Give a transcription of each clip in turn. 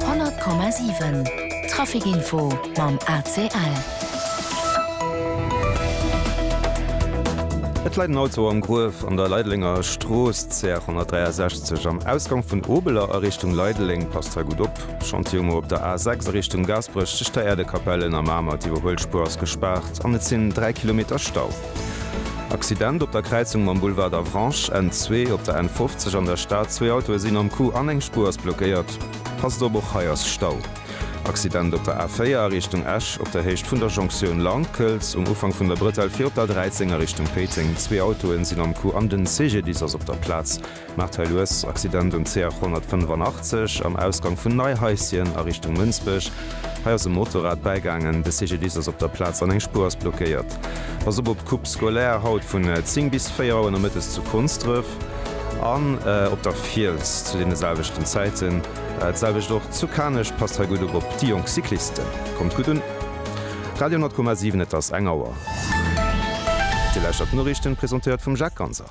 100,7 Trafic Info mam ACL. Et läit en Auto am Gruef an der Leidelenger Strooss, CR 163, am Ausgang vun Obeler a Richtung Leideleng. Passt hei gutt op. Chantier ukomm op der A 6 a Richtung Gaasperech, tëscht der Äerdekapell, Ënnermamer. D'Iwwerhuelspuer ass gespaart an et sinn 3 Kilometer Stau. Accident op der Kräizung mam Boulevard d'Avranches, Enn zwee op der N50 an der Stad, zwee Autoe sinn am Coup an eng Spuer ass blockéiert. Passt op, och hei ass Stau. Accident op der A4 a Richtung Esch, op der Héicht vun der Jonktioun Lankelz, um Ufank vun der Brëtell fir op der 13 a Richtung Péiteng, zwee Autoe sinn am Coup an den CGDIS ass op der Plaz. Maarthalues, Accident um CH 185 am Ausgang vun Neihaischen a Richtung Mënsbech. Hei ass e Motorrad bäigaangen, de CGDIS ass op der Plaz an eng Spuer ass blockéiert. Pass op op d'Coupe scolaire haut vun 10 bis 4 Auer nomëttes zu Konsdref an op der Fiels zu deene selwechten Zäiten. D'selwecht och zu Kanech. Passt hei gutt op op déi jonk Cyclisten. Kommt gutt un. Radio 10,7, et ass eng Auer. Dir lauschtert d'Noriichten, presentéiert vum Jacques Ganser.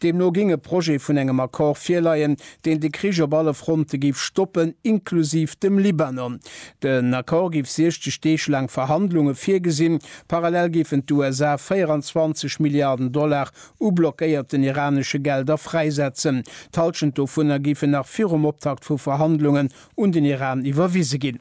Deemno géing e Projet vun engem Accord virleien, deen de Krich op alle Fronte géif stoppen, inklusiv dem Libanon. Den Accord géif 60 Deeg laang Verhandlunge virgesinn. Parallel géifen d'USA 24 Milliarden Dollar u blockéierten iranesche Gelder fräisetzen. D'Hallschent dovunner géifen nach virum Optakt vu Verhandlungen un den Iran iwwerwise ginn.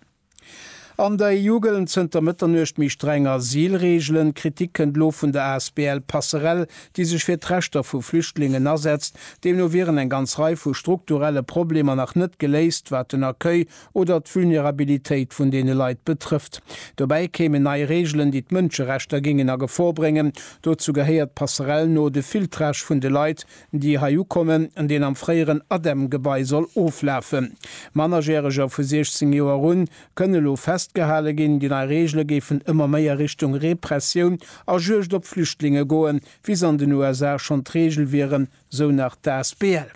An der EU gëllen zënter Mëtternuecht méi streng Asylreegelen. D'Kritik kënnt elo vun der asbl Passerelle, déi sech fir d'Rechter vu Flüchtlingen asetzt. Deemno wieren eng ganz Rei vu strukturelle Problemer nach net geléist, wat den Accueil oder d'Vulnerabilitéit vun deene Leit betrëfft. Dobäi kéimen nei Reegelen, déi d'Mënscherechter géingen a Gefor bréngen. Dozou gehéiert Passerelle no de Filtrage vun de Leit, déi hei ukommen, an deen am fréieren ADEM-Gebai soll oflafen. Mannerjäreger vu 16 Joer un kënne elo festgehale ginn. Déi nei Reegele géifen ëmmer méi a Richtung Repressioun a Juegd op Flüchtlinge goen, wéi se an den USA schonn d'Reegel wieren, sou nach d'Asbl.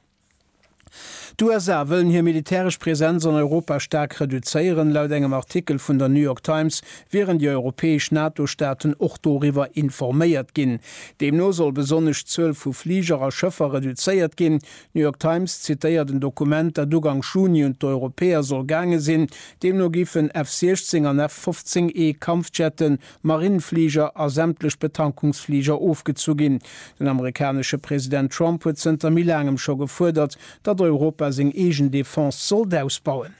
D'USA wëllen hir militäresch Presenz an Europa staark reduzéieren. Laut engem Artikel vun der New York Times wieren déi europäesch NATO-Staaten och doriwwer informéiert ginn. Deemno soll besonnesch d'Zuel vu Fliger a Schëffer reduzéiert ginn. D'New York Times zitéiert en Dokument, dat ugank Juni un d'Europäer soll gaange sinn. Deemno géifen F-16 an F-15E Kampfjette Marinefliger a sämtlech Betankungsfliger ofgezu ginn. Den amerikanesche President Trump huet zënter méi laangem scho gefuerdert, datt Europa seng eegen Defense sollt ausbauen.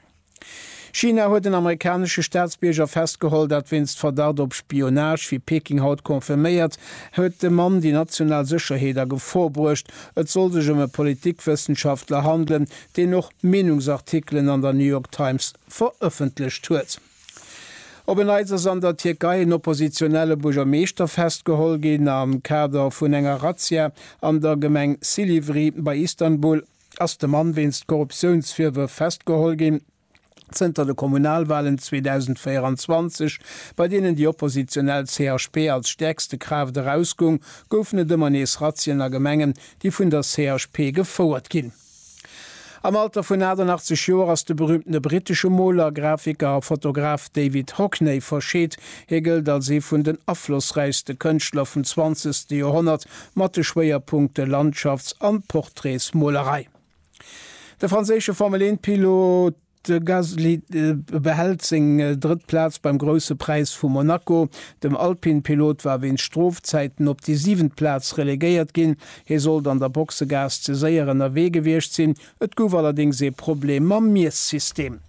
China huet en amerikanesche Staatsbierger festgeholl, dat wéinst Verdacht op Spionage. Wéi Peking haut confirméiert, huet de Mann déi national Sécherheet a Gefor bruecht. Et soll sech ëm e Politikwëssenschaftler handelen, deen och Meenungsartikelen an der New York Times verëffentlecht huet. Op en Neits ass an der Tierkei en oppositionelle Buergermeeschter festgeholl ginn. Am Kader vun enger Razzia an der Gemeng Silivri bei Istanbul ass de Mann wéinst Korruptiounsvirwërf festgeholl ginn. Zënter de Kommunalwalen 2024, bei deenen déi oppositionell CHP als stäerkste Kraaft erausgoung, goufen et ëmmer nees Razzien a Gemengen, déi vun der CHP gefouert ginn. Am Alter vun 88 Joer ass de berüümtene brittesche Moler, Grafiker a Fotograf David Hockney verscheet. Hie gëllt als ee vun den aflossräichste Kënschtler vum zwanzegste Joerhonnert, mat de Schwéierpunkte Landschafts an Portraitsmolerei. De franséische Formel-1-Pilot. De Gasly behält seng drëtt Plaz beim Grousse Präis vu Monaco. Den Alpine-Pilot war wéinst Strofzäiten op déi siwent Plaz relegéiert ginn. Hie sollt an der Boxegaass ze séier ënnerwee gewiescht sinn. Et gouf allerdéngs ee Problem mam Miessystem.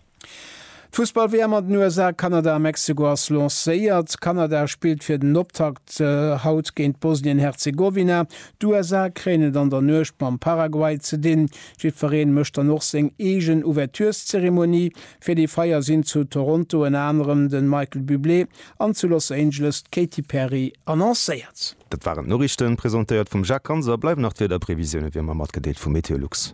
D'Fussball-WM an den USA, Kanada a Mexiko ass lancéiert. Kanada spillt fir den Optakt haut géint Bosnien-Herzegowina. D'USA kréien et an der Nuecht mam Paraguay ze dinn. Jiddwereen mécht dann och seng eegen Ouvertureszeremonie. Fir déi Feier sinn zu Toronto ënner anerem de Michael Bublé an zu Los Angeles d'Katy Perry annoncéiert. Dat waren d'Noriichten, presentéiert vum Jacques Ganser. Bleiwen nach d'Wiederprevisioune wéi ëmmer matgedeelt vu Meteolux.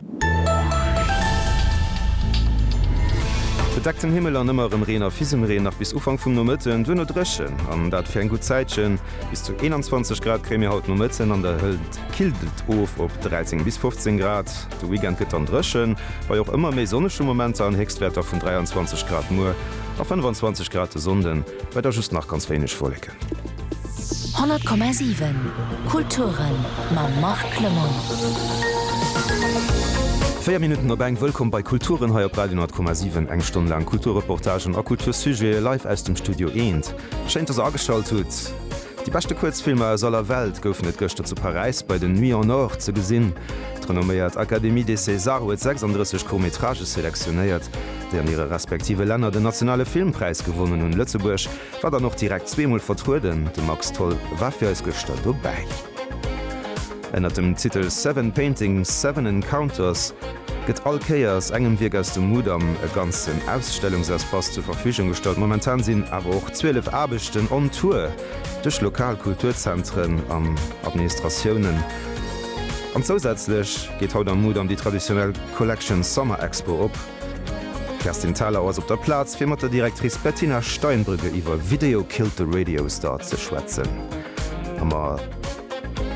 Bedeckten Himmel an ëmmer erëm Reen a Fisemreen nach bis Ufank vum Nomëtten, duerno dréchen an dat fir eng gutt Zäitchen. Bis zu 21 Grad kréie mir haut Nomëtten an der Hënt. killt et of op 13 bis 15 Grad. De Weekend gëtt dann dréchen, bei och ëmmer méi sonnege Momenter an Héchstwäerter vun 23 Grad muer a 25 Grad de Sonnden, bei da just nach ganz wéineg Wolleken. 100,7 Kulturen mam Marc Lemon. Véier Minutten op eng, wëllkomm bei Kulturen hei op Radio 10,7. Eng Stonn laang Kulturreportagen a Kultursujete live aus dem Studio Eent. Schéin dass der ageschalt hutt. Déi beschte Kuerzfilmer aus aller Welt goufen et gëschter zu Paräis bei den Nuits en Or ze gesinn. D'renomméiert Académie des Césars huet 36 Court-métrages selektionéiert, déi an hire respektive Länner den nationale Filmpräis gewonnen hunn. Lëtzebuerg war dann och direkt zweemol vertrueden, de Max Tholl war fir eis gëschter dobäi. Ënnert dem Titel Seven Paintings, Seven Encounters, Gëtt all Kéiers engem Wierk aus dem Mudam e ganzen Ausstellungsespace zur Verfügung gestallt. Momentan sinn awer och 12 Aarbechten on Tour duerch lokal Kulturzentren an Administratiounen. An zousätzlech geet haut am Mudam déi traditionell Collection Summer Expo op. D'Kerstin Thalau ass op der Plaz, fir mat der Directrice Bettina Steinbrügge iwwer Video Killed the Radio Star ze schwätzen a mat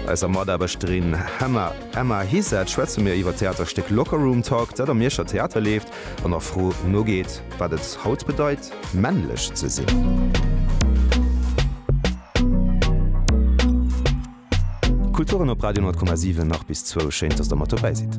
eiser Mataarbechterin Hemma. Emma Heesaert schwätze mir iwwer d'Theaterstéck Locker Room Talk, dat am Mierscher Theater leeft an der Fro nogeet, wat et haut bedeit, männlech ze sinn. Kulturen op Radio 10,7 nach bis zwou. Schéin, dass der mat dobäi sidd.